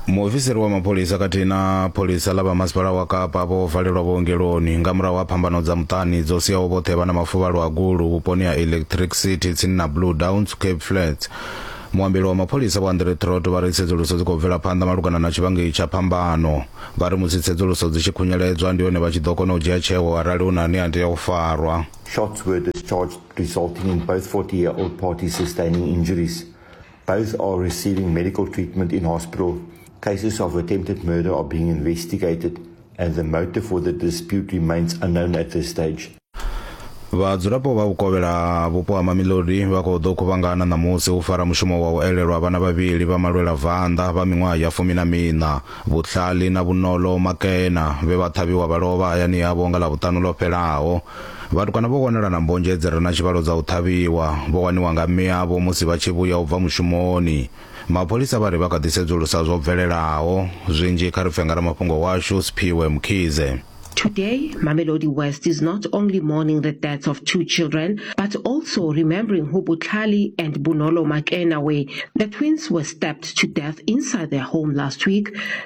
muofisiri wa mapholisa khathihi na pholisa ḽa vha masipala wa kapa vho valelwa vhuongeloni nga murahu ha phambano dza muṱani dzo siaho vhoṱhe vha na mafuvhalo a gulu vhuponi ha electric city tsini na blue downs cape flats muambeli wa mapholisa vho andre trot vha ri tsedzuluso dzi khou bvela phanḓa malugana na tshivhangi tsha phambano vha ri musi tsedzuluso dzi tshi khunyeledzwa ndi hone vha tshi ḓo kona u dzhia tsheo arali hu na ane a tea u farwa Shots were discharged, resulting in both 40-year-old parties sustaining injuries. Both are receiving medical treatment in hospital. Cases of attempted murder are being investigated and the motive for the dispute remains unknown at this stage. vhadzulapo vha vhukovhela vhupo ha mamilodi vha khou ḓo khuvhangana ṋamusi u fara mushumo wa u elelwa vhana vhavhili vha malwela vanḓa vha miṅwaha ya fumi na miṋa vhutlhali na vhunolo makena vhe vha ṱhavhiwa vha lovha hayani yavho nga ḽavhuṱanu ḽo fhelaho Vhatukana vho wanala na mbonzhe dzi re na tshivhalo dza u ṱhavhiwa, vho waniwa nga mme avho musi vha tshi vhuya u bva mushumoni. Mapholisa vha ri vha kha ḓi sedzulusa zwo bvelelaho. Zwinzhi kha ri pfe nga ramafhungo washu Sphiwe Mkhize. Today, Mamelodi West is not only mourning the deaths of two children, but also remembering who Butlhali and Bonolo Makena were. The twins were stabbed to death inside their home last week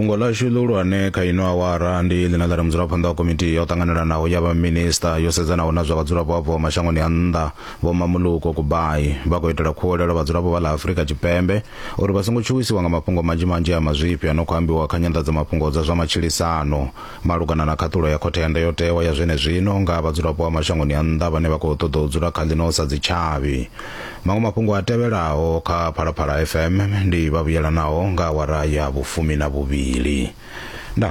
fhungo ḽashu ḽihulwane kha ino awara ndi ḽine ḽa ri mudzulaphanḓa wa komiti ya u ṱanganelanaho ya vhaminista yo sedzanaho na zwa vhadzulapo abvaho mashangoni a nnḓa vho mamuluko kubai vha khou itela khuwelelo vhadzulapo vha ḽa afurika tshipembe uri vha songo tshuwisiwa nga mafhungo manzhi manzhi a mazwifhi a no khou ambiwa kha nyanḓadzamafhungo dza zwa matshilisano malugana na khaṱulo ya khothe ya ndayotewa ya zwenezwino nga vhadzulapo vha mashangoni a nnḓa vhane vha khou ṱoḓa u dzula kha ḽino sa dzitshavhi maṅwe mafhungo a tevhelaho kha phalaphala fm ndi vhavhuyelanaho nga awara ya vhufumi na vhuvhili nda